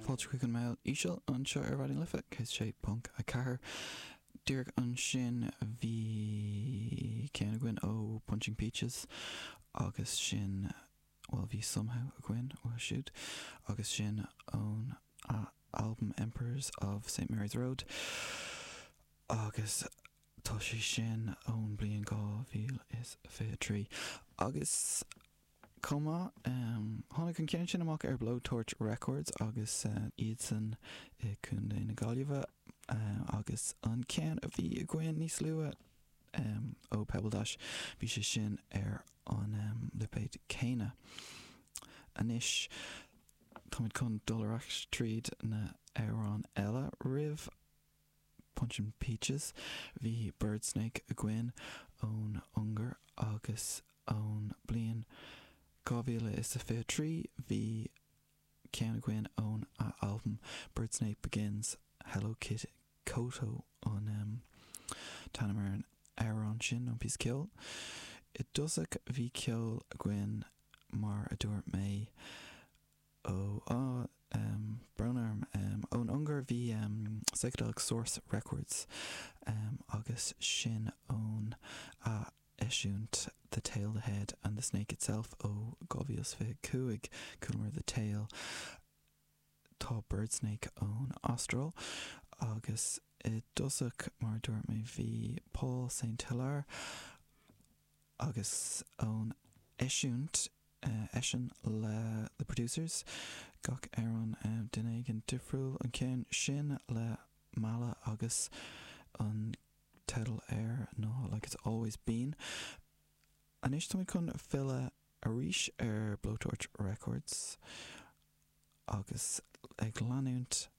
Fáilte chuig an mbéal íseal anseo ar Raidió na Life 106.4. Díreach ansin bhí ceann againn ó Punching Peaches agus sin, bhuel bhí Somehow againn ó siúd agus sin ón albam Emperors of St Mary's Road agus tá sé sin ón bliain 2023. Agus chomh maith. Tháinig an ceann sin amach ar Blowtorch Records agus iadsan i Contae na Gaillimhe agus an ceann a bhí againn níos luaithe ó Pebbledash, bhí sé sin ar an lipéad céanna. Anois táimid chun dul ar ais tríd na hamhráin eile roimh. Punching Peaches. Bhí Birdsnake againn ón Ungáir agus ón bliain 2023 bhí ceann againn óna albam Birdsnake Begins, Hello Kitty Koto an t-ainm ar an amhrán sin nó an píosa ceoil. I dtosach bhí ceol againn mar a dúirt mé, Ó, á, em, brón orm, em, ón Ungáir, bhí, em, Psychedelic Source Records, em, agus sin óna eisiúint The Tail, The Head and The Snake Itself ó 2025, chualamar The Tail, tá Birdsnake ón Astráil agus i dtosach, mar a dúirt mé, bhí Paul St. Hilaire, agus ón eisiúint eisean le The Producers, gach amhrán duine éigin difriúil an ceann sin le Mala agus an teideal air ná Like It's Always Been. Anois táimid chun filleadh arís ar Blowtorch Records agus ag leanúint